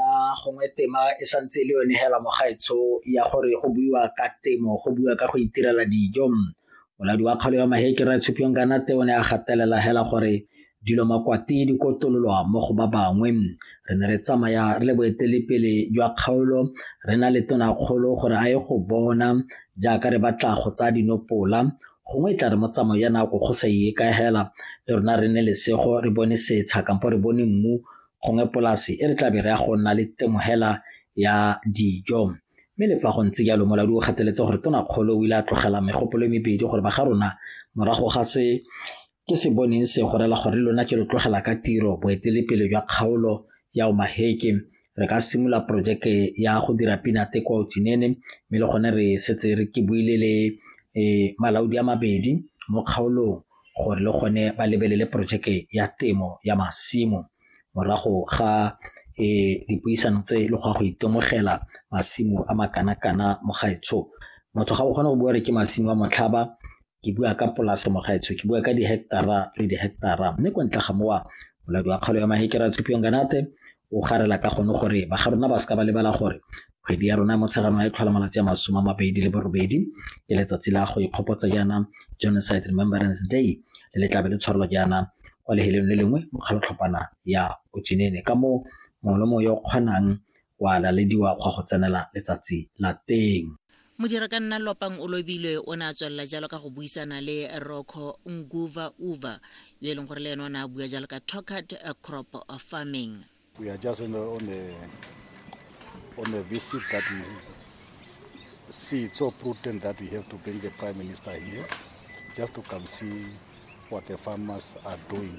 a gongwe tema e santse e le yone hela mogaetsho ya gore go buiwa ka temo go buiwa ka go itirela dijo molaodi wa kgalo ya mahekere a tshupiwang ka nate o ne a gatelela hela gore dilo makwati di kotololwa mo go ba bangwe re ne re tsamaya re le boetelepele jwa kgaolo re na le tonakgolo gore a ye go bona jaaka re batla go tsaya dinopola gongwe e tla re mo tsamayo ya nako go sa e ka hela le rona re ne lesego re bone setsha kampo re bone mmu gongwe polase e re tlabe re ya go nna le temogela ya dijo mme le fa go ntse jalo moladi o kgateletse gore tonakgolo o ile a tlogela megopolo e mebedi gore ba ga rona morago ga se ke se boneng se gorela gore lona ke lo tlogela ka tiro boetelepele jwa kgaolo ya omaheke re ka simolola porojeke ya go dira pinate kwa otinene mme le gone re setse re ke buile le um malaodi a mabedi mo kgaolong gore le gone ba lebelele porojeke ya temo ya masimo morago ga e dipuisano tse le go go itemogela masimo a makana-kana mo gaetsho motho ga o kgone go bua gore ke masimo a motlhaba ke bua ka polase mo gaetsho ke bua ka di-hectara le di-hectara mme ko ntle ga mowa moladi wa kgalo ya mahekera tshupiong kanate O garela ka gone gore ba ga rona ba seka ba lebala gore kgwedi ya rona ya Motsheganong a e tlhola malatsi a masome a mabedi le borobedi ke letsatsi la go ikgopotsa jaana Genocide Remembrance Day le le tlabe le tshwarelwa jaana kwa leheleng le lengwe mo kgalotlhopana ya Ojinene ka moo mongwe le mongwe yo o kgonang wa lalediwa go ya go tsenela letsatsi la teng. Modirakanna Lopang Olobilwe o ne a tswelela jalo ka go buisana le Rocco Nguva Uva yo e leng gore le ene o ne a bua jalo ka Tokat crop farming. We are just on a, on a, on a visit that we see it's so prudent that we have to bring the Prime Minister here just to come see what the farmers are doing.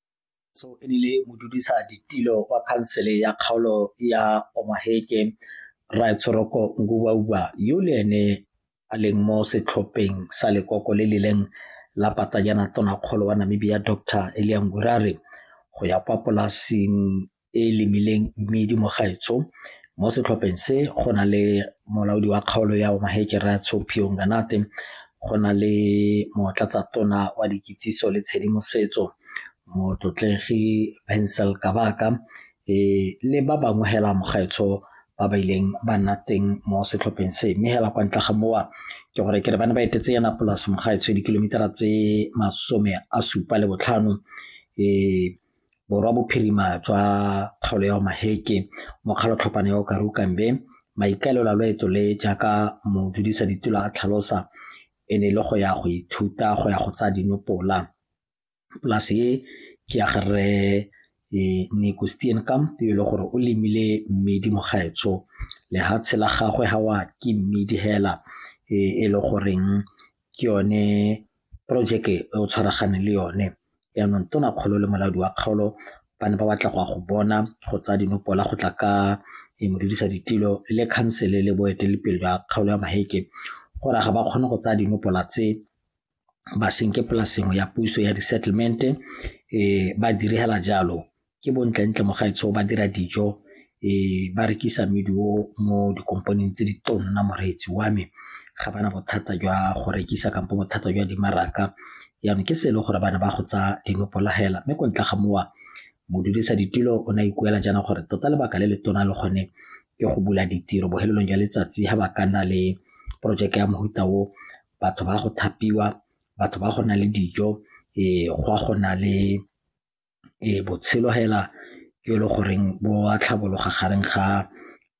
Tso e nile modudisa ditilo kwa khansele ya kgaolo ya Omaheke Rraetsholoko Ngubauba yo le ene a leng mo setlhopheng sa lekoko le lileng la patanyana tonakgolo wa Namibia Dr Elia Ngurare go ya kwa polasing e e lemileng mmidi mo gaetsho mo setlhopheng se go na le molaodi wa kgaolo ya Omaheke Ratsho Phiong Ganate go na le motlatsa tona wa dikitsiso le tshedimosetso motlotlegi Bensel Kabaka e le ba bangwe hela mo gaetsho ba ba ileng ba nna teng mo setlhopheng se mme hela kwa ntle ga mowa ke gore ke re ba ne ba etetse yana polase mo gaetsho dikilomitara tse masome a supa le botlhano e Borwa Bophirima jwa kgaolo ya Omaheke, Mokgalotlhopana ya Okaru Kambe, maikaelelo a loeto le jaaka modudisa-ditulo a tlhalosa e ne le go ya go ithuta go ya go tsaya dinopola. Polase e ke ya ga rre Nico Steenkamp yo e le gore o lemile mmidi mo gaetsho. Lehatshe la gagwe ga wa ke mmidi hela e le goreng ke yone porojeke e o tshwaraganeng le yone yanong tona kgolo le molaodi wa kgaolo ba ne ba batla go ya go bona go tsaya dinopola go tla ka e modudisa ditilo le khansele le boeteledipele jwa kgaolo ya maheke gore ga ba kgone go tsaya dinopola tse ba senke polasengwe ya puso ya di-settlement-e um ba direla jalo ke bo ntlentle mo gaetsho ba dira dijo ba rekisa mmidi o mo dikompaneng tse di tonna moreetsi wa me ga bana bothata jwa go rekisa kampo bothata jwa dimaraka jaanong ke se e le gore bana ba go tsa dinopolagela mme ko ntle ga mowa modudisa ditulo o ne a ikuela jaana gore tota lebaka le le tona le gone ke go bula ditiro bohelelong jwa letsatsi ga ba ka nna le porojeke ya mohuta o batho ba go thapiwa batho ba go na le dijo um go a go na le Ee, botshelo fela ke e le goreng bo a tlhabologa gareng ga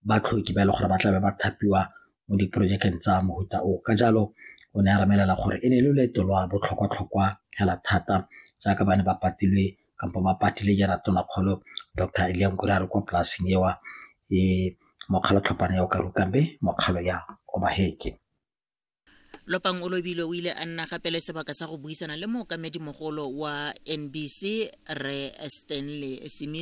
batlhoki ba e leng gore ba tlabe ba thapiwa mo diporojekeng tsa mofuta o. Ka jalo o ne a re bolelela gore e ne e le loeto lwa botlhokwa-tlhokwa fela thata jaaka ba ne ba patilwe kampo ba patile jaana Tona Kgolo Doctor Eliya Nkuraero kwa polasing eo e mokgwa wa tlhopana ya Okaruka mme mokgwa wa ya Obaheke. lopang o lobilwe o ile a nna gape le sebaka sa go buisana le mookamedimogolo wa nbc re stanley